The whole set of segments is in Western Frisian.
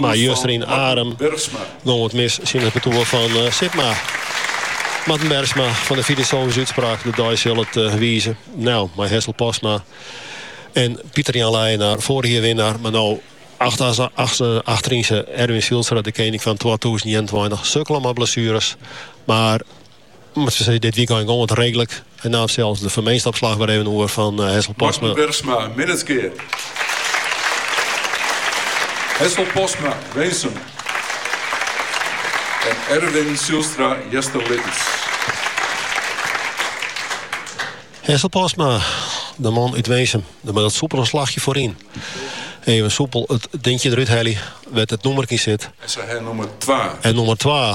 Mar juster yn Arum gong it mis tsjin it partoer fan Sipma. Marten Bergsma fan de filosofyske útspraak de dei sil it wize. No mei Hessel Postma en Pieter Jan Leijenaar foarich jier winnaar, mar no achterynse Erwin Zijlstra de kening fan twatûzen ienentweintich sukkele mei blessueres. Mar. Mar se sizze, dit wykein gong it reedlik. En naam sels de foarminstopslach wer even oer fan Hessel Postma. Marten Bergsma, Minnertsgea. Hessel Postma, Winsum. En Erwin Zijlstra, Easterlittens. Hessel Postma, de man út Winsum. De man mei it soepele slachje foaryn. Even soepel it dinkje derút helje, wêr't it nûmerke yn sit. En nûmer 2.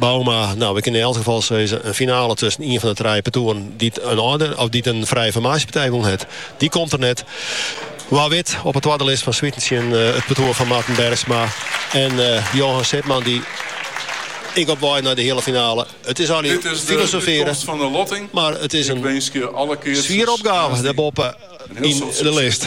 Bouma, no, we kinne yn elk gefal sizze, in finale tusken ien fan de trije partoeren dy't in âlder of dy't in frije formaasjepartij wûn hat, dy komt der net. Wa wit op 'e twadde list Van Zwieten tsjin it partoer fan Marten Bergsma en Johan Sipma dy ek op wei nei de heale finale. It is allinne filosofearjen, mar it is in swiere opgave dêrboppe yn de list.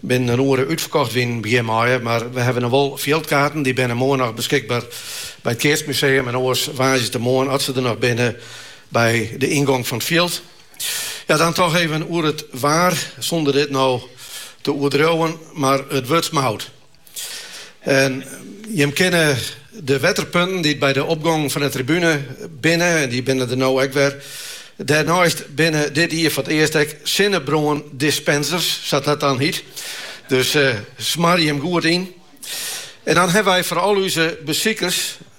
Binnen in oere útferkocht wienen begjin maaie, mar we hawwe noch wol fjildkaarten. Dy binne moarn noch beskikber by it Keatsmuseum en oars woansdeitemoarn, as se der noch binne, by de yngong fan it fjild. Ja, dan toch even oer it waar, sûnder dit no te oerdriuwen, mar it wurdt smout. En jim kinne de wetterpunten dy't by de opgong fan de tribune binne, en dy binne der no ek wer. Dêrneist binne dit jier foar it earst ek sinnebrân dispensers, sa't dat dan hiet. Dus smar jim goed yn. En dan hawwe wy foar al úze besikers,